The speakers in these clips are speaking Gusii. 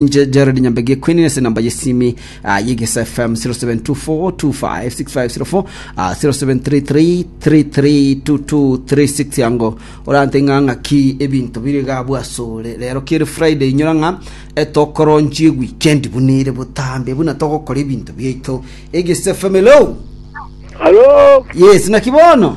Inche Gerald Nyambegi Queen ase namba yesimi uh, yegesa FM 0724256504 uh, 0733332236 yango orante ng'a ng'aki ebinto bire gabu asore rero kere Friday inyora ng'a etokoronchi weekend bunire botambe buna togokora ebinto biaito egesa FM hello Halo, yes nakibono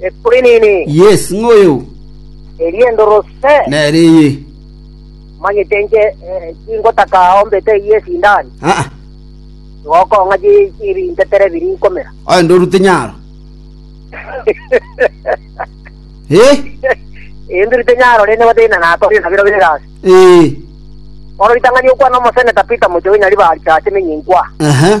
Equinini. Yes, ng'oyo. Eria endorose. Nere eye. Omanyete inche tingotaka ombete eyio esindani. Aa. Igo okong'a chibintetera ebiri nkomera. Aye ndorute nyaro. Ee. Ee ndorute nyaro rende gotari na natoria nabiro bire gasi. Ee. Bono ritang'ani okwana omoseneta Peter Mochoge Nyaribari tache emenye inkwa. Aha.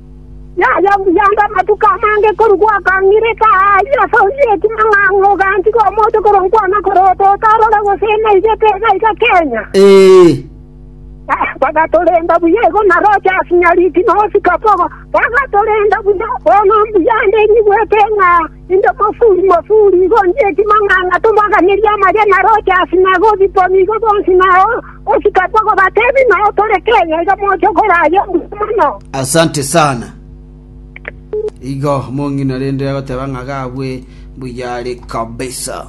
Yayombirie ande amatuko amange korwa gwakang'ireka ayio ase oyio ekiman'gang'a oganchika omote korongwa anga korota otorore gose naigete iga iga Kenya. Bagatorenda buya igo na Rogers Nyariki na Oscar Bogo bagatorenda buya, bono mbuya ande nyigwete ng'a Inche omosuri, mosuri, igo ndieti mang'ana tobaaganerie amache na roche ase Nairobi koni igo bonsi na ogosika kogobatebi noyo tore Kenya iga moche korayia buya mono. Asante sana. Igo mong'ina rende agoteba ng'a gabwe mbuya are kabisa.